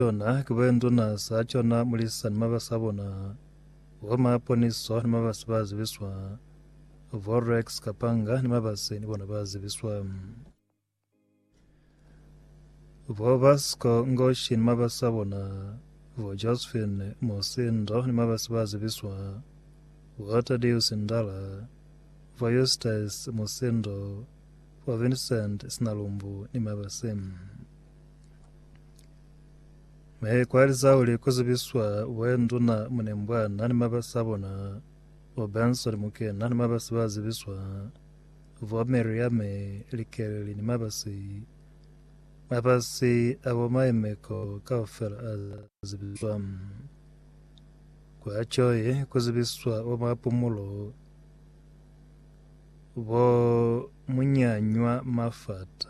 Yona ki ba nduna za cona mulisa ni mabasi a bona, bo maponiso ni mabasi ba zibiswa, bo Rex Kapanga ni mabasi ni bona ba zibiswa, bo Basco Ngoshi ni mabasi a bona, bo Josephine Musindo ni mabasi ba zibiswa, bo Tadeus Ndala, bo Eustace Musindo, bo Vincent Sinalumbu ni mabasi. Ne i kwaliza kuli ku zibiswa we nduna Munembwa na ni mabasi a bona, bo Benson Muke na ni mabasi ba zibiswa, bo Miriame Likeleli ni mabasi. Mabasi a bo Maimeko kaufela a zibiswa. Kwa Joy ku zibiswa bo Mapumulo, bo Munyanywa Mafata.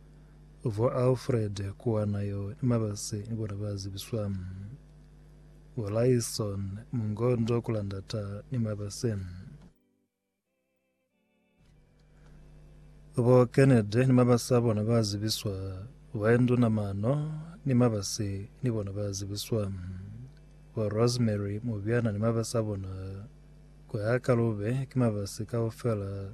Vo Alfred kuwana yo ni mabasi ni bona ba zibiswa. Vo Lyson mungondo kula ndata ni mabasi. Vo Kennedy ni mabasi a bona ba zibiswa. Vo Andrew na mano ni mabasi ni bona ba zibiswa. Vo Rosemary Mubyana ni mabasi a bona. Kuya ka lube ki mabasi kaufela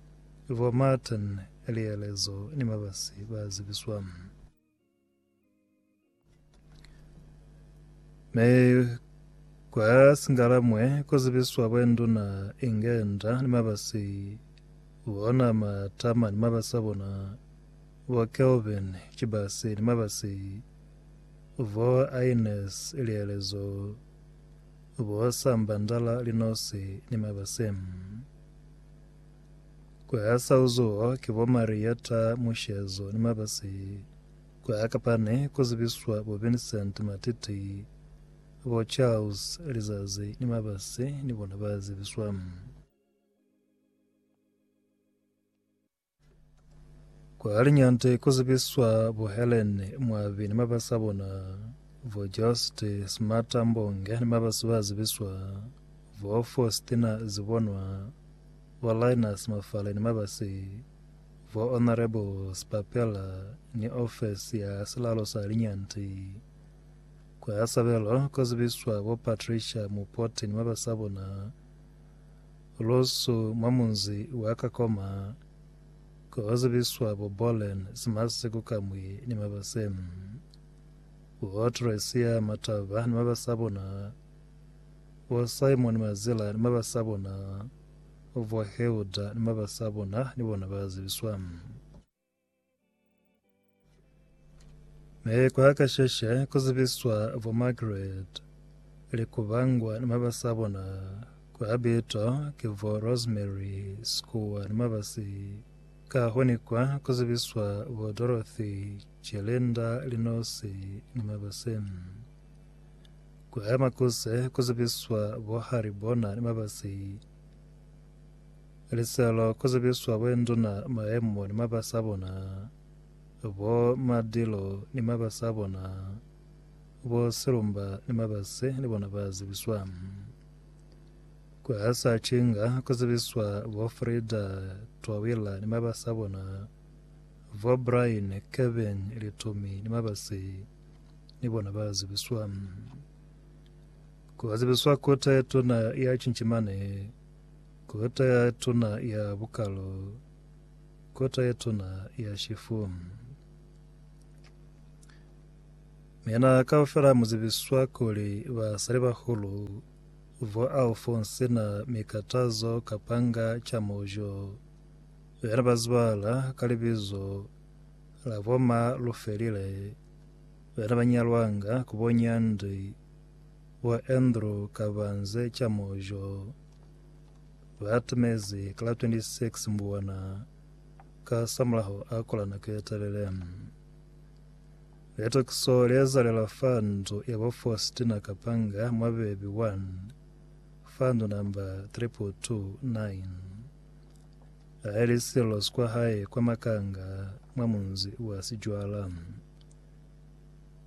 Bo Martin, Lielezo ni Mabasi ba Zibiswa. Mi kwa Singalamwe ku zibiswa bwenduna Ingenda ni Mabasi bona Matama ni Mabasi a bona, bo Kelvin Chibasi ni Mabasi, bo Aines Lielezo, bo Samba Ndala Linosi ni Mabasi. Ku ha sa uzuho ki bo Marietta Mushezo ni Mabasi, ku ha kapani ku zibiswa bo Vincent Matiti, bo Charles Lizazi ni Mabasi ni bona ba zibiswa. Kwa liñande ku zibiswa bo Helen Mwabi ni mabasi a bona, bo Jost Smata Mbonge ni mabasi ba zibiswa, bo Faustina Zibonwa, bo Linus Mafale ni mabasi, bo Honourable Sipapela ni ofesi ya silalo sa liñande. Kwa sabelo ku zibiswa bo Patricia Mupoti ni mabasi a bona, Lusu mwa munzi wa Kakoma, ko ho zibiswa bo Bolen, Simasi, Kukamwi ni mabase. Bo Tresia Mataba ni mabase a bona, bo Simon Mazila ni mabase a bona, bo Hilda ni mabase a bona ni bona ba zibiswa. Mi kwa kasheshe ku zibiswa bo Margaret le ku bangwa ni maba sa bona ku habito ki bo Rosemary Sikuwa ni maba si ka ho ni kwa ku zibiswa bo Dorothy Chelenda Linosi ni maba se. Kwa makuse ku zibiswa bo Haribona ni maba si Liselo ku zibiswa boinduna maemo ni mabasi a bona, bo madilo ni mabasi a bona, bo silumba ni mabasi ni bona ba zibiswa. Ku hasa cinga ku zibiswa bo Frida Twawila ni mabasi a bona, bo Brian Kevin Litomi ni mabasi ni bona ba zibiswa. Ku zibiswa Kota ye Tuna ya Cincimani, Kota ye Tuna ya Bukalu, Kota ye Tuna ya Shifu. Mina kaufela mu zibiswa kuli basalibahulu vo Alphonse na Mikatazo Kapanga Chamujo be ne ba zibahala ka libizo la bo Ma Lufelile be ne ba nyalwanga ku bo Nyandi Bo Andrew Kabanze Chamojo ba atumezi ka la 26 Mbuwana kasamulaho a kola nako ye telele. Litokiso le ezalela fa ndu ya bo Faustina Kapanga mwa Bebi 1 fa ndu namba 2229 ha e li sililo sikwa hae kwa Makanga mwa munzi wa Sijwala.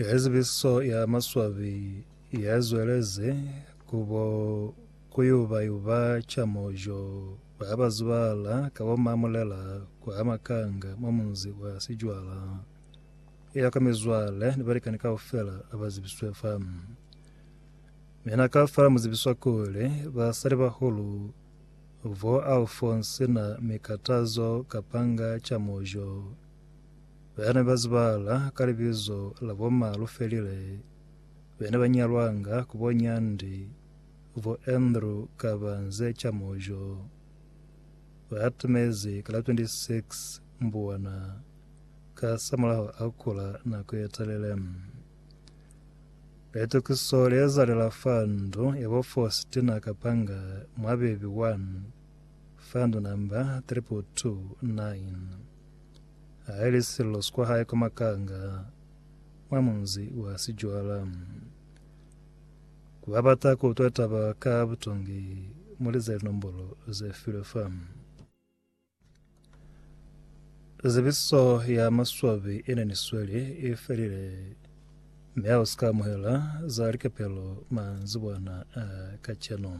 Ka zibiso ya maswabi ya zwelezi kubo kuyubayuba chamojo ba bazibala ka bo mamulela kwa makanga mwa munzi wa Sijwala ya ka mizwale ni balikani kaufela abazibiswe fa mina kaufela muzibiswa kuli basali bahulu Vo Alphonse na mi katazo kapanga ca mojo. Ba ne ba zibahala ka libizo la bo Malufelile, be ne ba nyalwanga ku bo Nyandi, vo Andrew ka ba nze ca mojo. Ba atumezi ka la 26 Mbuwana, ka samulaho a kula nako ye telele. Litukiso leezalela fa ndu yebo Faustina Kapanga mwa Bebe 1, fa ndu namba 3229. Haili sililo skwahae kwa Makanga, mwa munzi wa Sijwala. Kubabata kuutwa taba ka butongi, mulize linombolo zefilwe fa. Zebiso ya maswabi ine ni sweli i felile, mi ha u si ka amuhela za likapelo manzibwana a kacenu.